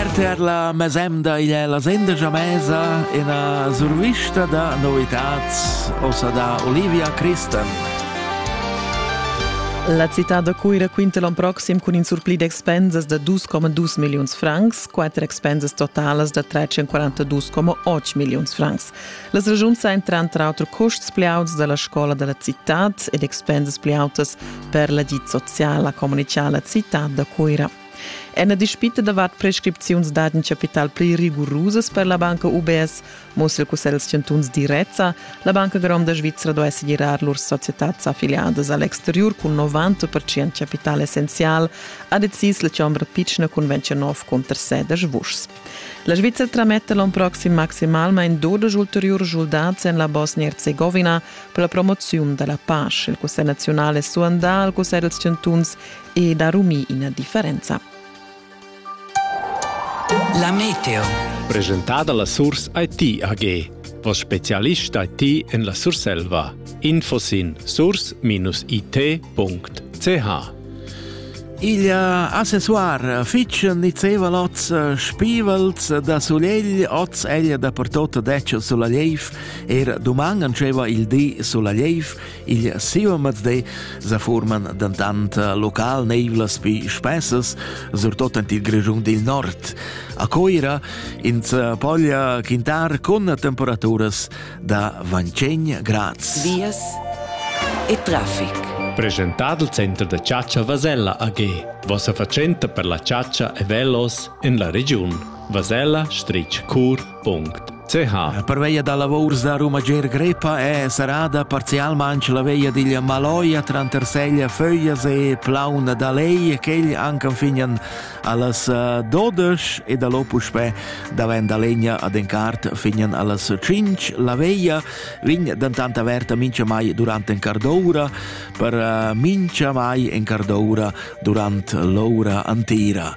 RTR la mesemda igl è la senda Jamesa, ina survista da novitats, ossa da Olivia Christen. La città da Cuira quinta l'on proxim cun in surpli d'expensas da 2,2 milliuns francs, quatter expensas totalas da 342,8 milliuns francs. Las ragiuns ein tranter auter custs pli auts dalla scola dalla cittad ed expensas pli autas per l'agid social, ha communitgà la cittad da Cuira. En la dispita davart prescripziuns dad in chapital pli rigurusas per la banca UBS mussa il Cussegl dals chantuns direzza, la Banca gronda svizra duai segirar lur societads affiliadas a l'exteriur cun 90% chapital essenzial, ha decis la chombra pitschna cun 29 cunterseders vuschs. La Svizzera trametta l'on proxim maximalmain 12 ulteriurs schuldats en la Bosnia-Herzegovina per la promoziun da la pace. Il Cussegl nazional è suandà al Cussegl dals chantuns ed ha rumì ina differenza. La meteo. Presentada la Surs IT AG. Voss spezialist IT en la Surselva. Info sin surs-it.ch Il accessoir fitg nizzeva l'oz spivels da sulegl, oz egl da pertot detg sulla leiv, er doman antscheva il di sulla leiv, Il siu mazde sa forman dantant local neivlas pi spessas, surtot en il Grischun dil Nord. A Coira ins poglia quintar con temperaturas da 25 grads. Vias e traffic. Presentado il Center da Ciaccia Vasella AG. Vossa fatschenta per la Ciaccia e Velos en la regiun. Vasella, Stritsch Cur, La parveia da lavurs da Ruma Ger Grepa è serrada parzialmain la veia digl Maloia tranter Seglia Föglias e Plauna da Lei, quegl anc anfignan allas eh, dodesch e da lo puspè davent da legna ad encart fignan allas cinc. La veia vign dentant averta mincha mai durant en cardoura per eh, mincha mai en cardoura durant l'oura antira.